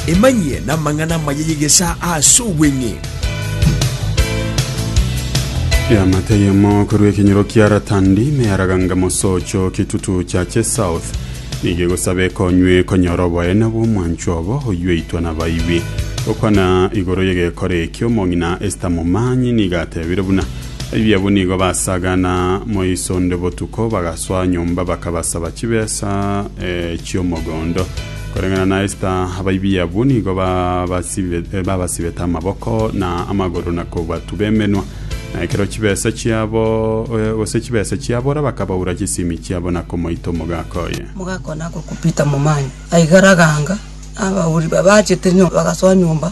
Emanyie namang'ana amaya y'egesaa aase obweng'e. Eamate eyemo korwa ekenyoro kia Ratandi, na yaraganga mosocho kitutu cha che south, nigo egosaba ekonywe konyora oboene bw'omwancho obo oyweitwa nabaibi. Gokwana igoro y'egekora ekio, omong'ina Esta momanyi nigo atebire buna Ebi abwo nigo basagana moiso onde botuko, bagasoa nyomba bakabasaba chibesa chi'omogondo. Koreng'ana na Esta, abaibi abwo nigo babasibete amaboko na amagoro na kobatuba emenwa, na ekero chibesa chiabo, gose chibesa chiabora bakabaura chisimi chiabo na komoita omogaka oye. Omogaka oye nakokupita momanya, aigaraga anga, abauri babachete nyomba bagasoa nyomba.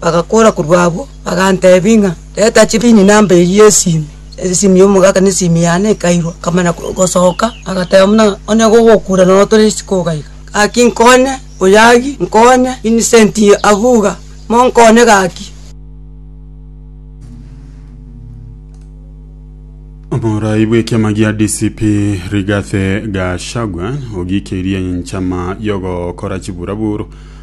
Bagakora korwa abwo, bagantebia ng'a, Reta chibini namba eyio y'esimi. Esimi y'omogaka na esimi yane ekairwa. Nkamanya gosoka, agateba buna, Onye gogokura nonya otore isiko iga iga. Gaki nkonye, Oyagi, nkonye, Vincent Abuga, monkonye gaki. Omorai bw'ekiama gia DCP Rigathi Gachagua ogikeirie enchama y'ogokora chiburaburu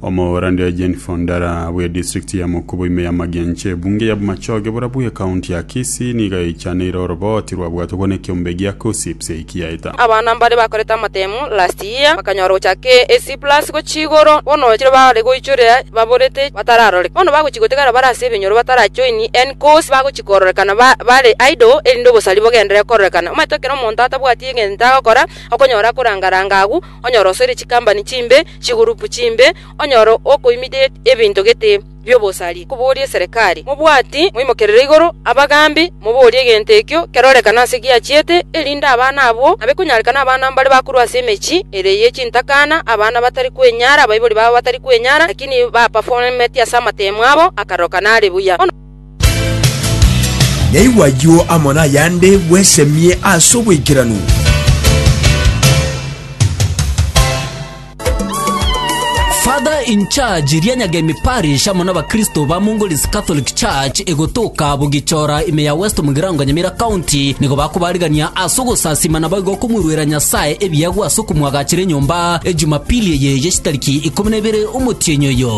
Omohoorande Eugene Fondara bw'edistrikti ya Mukubo ime y'amagena inche y'ebunge ya Bumachoge boria bw'ekaunti ya Kisii nigo yaichaneire orobooti rwabwatogwa n'ekeombe gia KUSSIPS eki yaeta. Abana mbaria bakorete amatemu last year bakanyora gochaka A C plus gochia igoro bono chire bare goichorera baborete batararoreka bono bagochia gotegera bare ase ebinyoro batara join any course bagochia kororekana bare idle erinde obosari bogendere kororekana omanyete ekero omonto atabwati egento agokora okonyora akoranga ranga agwo onyora osoire chikambani chimbe chigurupu chimbe, onyore okoimiria ebinto gete bi'obosari, koboria eserekari, Mobwati moimokerere igoro abagambi, moborie egento ekio kerorekane ase giachiete, erinde abana abwo abe konyarekana abana mbare bakorwa ase emechie ere ye chintakana, abana batari kwenyara, abaibori babo batari kwenyara, lakini bapaforometi ase amatemo abo, akaroka nare buya. Naigwe ayio amo nayande bwesemie ase oboikeranu. Father in charge ria Nyagemi Parish amo n'abakristo ba Mongolese Catholic Church egotoka Bugichora ime ya West Mugirango Nyamira County nigo bakobarigania ase ogosasima naboigo okomweruera Nyasae ebiegwa ase okomwagachera enyomba Ejumapili eye ye chitariki ikomi na ibere omotienyi oyo.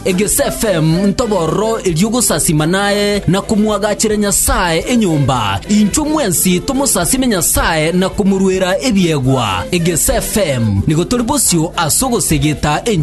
Egesfm ntobororo erio ogosasima naye na komwagachera Nyasae enyomba, intwe mwensi tomosasime Nyasae na komoruera ebiegwa. Egesfm nigo tori bosio ase ogosegeta enchili.